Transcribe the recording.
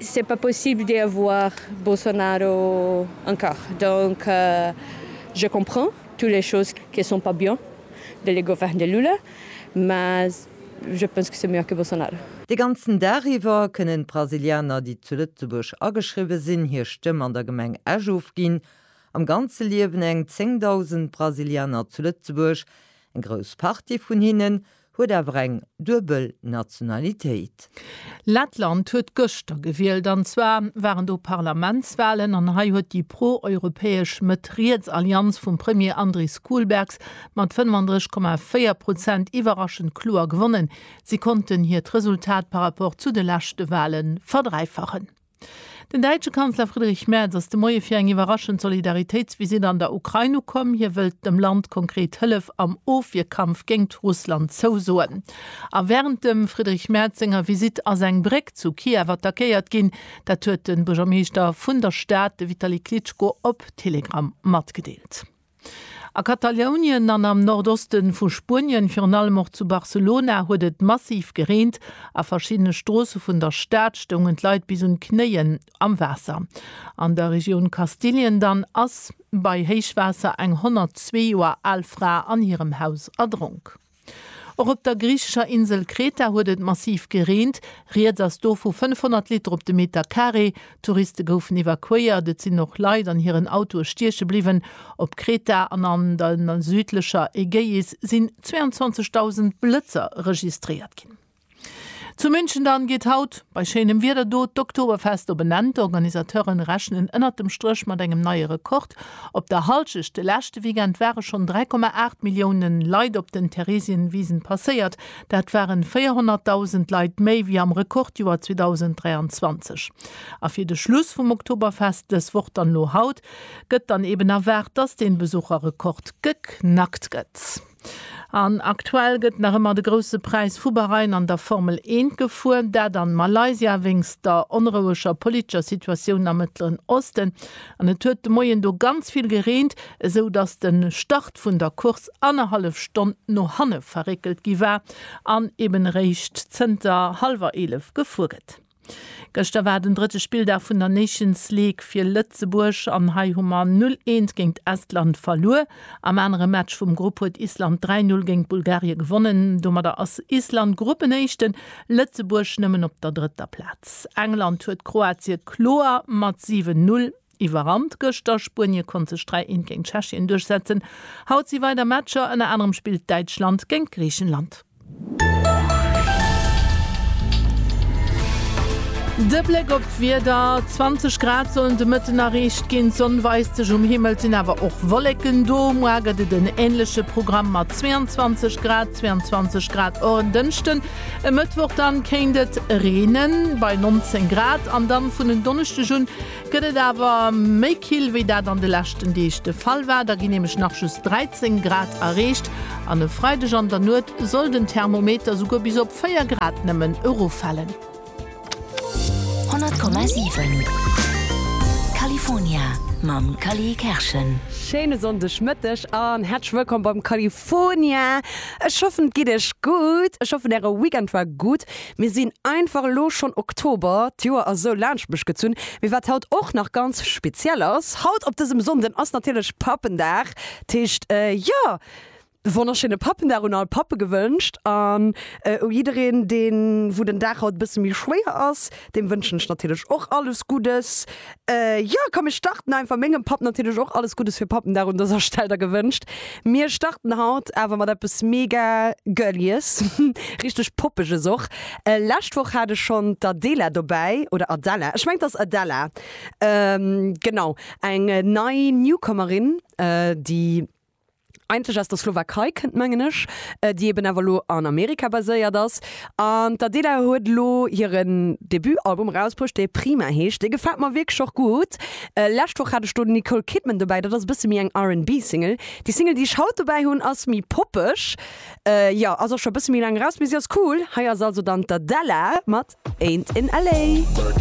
C'est pas possible de avoir Bolsonaro encore donc je comprends toutes les choses que sont pas bien de le govern de Lula mais je pense que c'est meilleur que Bolsonaro. De ganzen Dag iwwer kënnen d'Brasilianer, déi zu Lëtzebuerg ageschriwwe sinn, hir Stëmm an der Gemeng Esch ofginn. Am Ganze liewen eng 10.000 Brasilianer zu Lëtzebuerg. Eng grouss Partie vun hinnen Huet awer eng duebel Nationalitéit. Lettland huet gëschter gewielt, an zwar waren do Parlamentswalen, an hei huet déi pro-europäesch Mëtt-Riets-Allianz vum Premier Andris Kulbergs mat 35,4 Prozent iwwerraschend kloer gewonnen. Si konnten hiert Resultat par rapport zu de leschte Wale verdräifachen. Den däitsche Kanzler Friedrich Merz ass de Moie fir eng iwwerraschend Solidaritéitsvisitt an der Ukrain ukomm. Hie wëllt dem Land konkret Hëllef am Ofwierkampf géingt Russland zousoen. A wärend dem Friedrich Merz senger Visitt ass eng Bréck zu Kiew attackéiert ginn. Dat huet de Buergermeeschter vun der Stad, de Vitali Klitschko, op Telegram matgedeelt. A Katalounien an am Nordoste vu Spuenien, virun allem och zu Barcelona, huet et massiv gereent. A verschiddene Stroosse vun der Stad stoungen d'Leit bis un d'Knéien am Waasser. An der Regioun Kastilien dann ass bei Héichwaasser eng 102 Joer al Fra an hirem Haus erdronk. Och op der griichescher Insel Kreta huet et massiv gereent. Rieds ass do vu 500 Liter op de Meter Carré. Touriste goufen evakuéiert. Et sinn och Leit an hiren Autoe stieche bliwwen. Op Kreta an an der südlecher Ägäis sinn 22.000 Blëtzer registréiert ginn. Zu München dann geet haut bei schéinem Wieder do d'Oktoberfest op en Enn. D'Organisateuren rechnen ënnert dem Stréch mat engem neie Rekord. Op der Halschecht de leschte Weekend ware schonn 3,8 Millioune Leit op den Theresienwisen passéiert. Dat waren 400.000 Leit méi wéi am Rekordjoer 2023. A fir de Schluss vum Oktoberfest dës Woch dann elo haut gëtt dann eben erwaart, dass dee Besucherrekord geknackt gëtt. An aktuell gëtt nach ëmmer de Grousse Präis vu Bahrain an der Formel Eent gefuer. Dat an Malaysia wéinst der onroueger politescher Situatioun am Mëttleren Osten. An et huet de Moien do ganz vill gereent, esou datt de Start vun der Course annerhallef Stonn no hanne verréckelt gi war an eben eréischt zënter hallwer 11 gefuer gëtt. Gëschter war den drëtte Spilldag vun der Nations League fir Lëtzebuerg an hei hu mer 0 Eent géint Estland verluer. Am anere Match vum Grupp huet Island 3 Null géint Bulgarie gewonnen. Domadder ass Island Gruppenéischten, Lëtzebuerg nëmmen op der drëtter Plaz. England huet Kroatie kloer mat 7 Null. Iwwerrannt gëschter, Spuenie konnt sech 3, 1 géint Tschechien duerchsetzen. Haut si weider Matcher, ënner anerem spillt Däitschland géint Griichenland. De Bléck op d'Wieder, 20 Grad sollen de Mëtten erreecht ginn, d'Sonn weist sech, um Himmel sinn awer och Wolleken do. Moar gëtt et en änleche Programm mat 22 Grad, 22 Grad och en Dënschden. E Mëttwoch dann kéint et reenen, bei 19 Grad, an dann vun en Donneschdeg un Gëtt et awer méi kill, wéi dat an de leschten Deeg de Fall war, da ginn nämlech nach just 13 Grad erreecht an e Freideg an der Nuet soll den Thermometer souguer bis op 4 Grad nëmmen eroffalen. 100,7 California mam Cally Kerschen. Schéine Sonndeg Mëtteg an häerzlech wëllkomm beim California. Ech hoffen et geet iech gutt, ech hoffen äre Weekend war gutt. Mir sinn einfach elo schonn Oktober, d'Joer ass esou laanscht mech gezunn. Mee wat haut och nach ganz speziell ass, haut op dësem Sonnden ass natierlech Pappendag. Dat heescht, jo, wonnerschéine Pappendag un all Pappe gewënscht. An u jiddereen, deen, wou den Dag haut e bësse méi schwéier ass, deem wënschen ech natierlech och alles Guddes. Jo, komm mir starten einfach, mengem Papp natierlech och alles Guddes fir Pappendag un dëser Stell der gewënscht. Mir starten haut awer mat eppes mega Girlies, richteg Poppeges och. Lescht Woch hat ech schonn d'Adela dobäi, oder Adela, ech mengen et ass Adela, genau, eng nei Newcomerin, déi. eigentlech aus der Slowakei kënnt, mengen ech, déi eben awer elo an Amerika baséiert ass. An d'Adela huet elo hire Debutalbum erausbruecht, dee Prima heescht. Dee gefält mer wierklech och gutt. Lescht Woch hat ech do d'Nicole Kidman dobäi, dat ass e bësse méi eng RB-Single. Déi Single, déi ech haut dobäi hunn, ass méi poppeg, jo, ass och scho e bësse méi laang eraus, mee si ass cool. Hei ass also dann d'Adela mat Ain't In LA.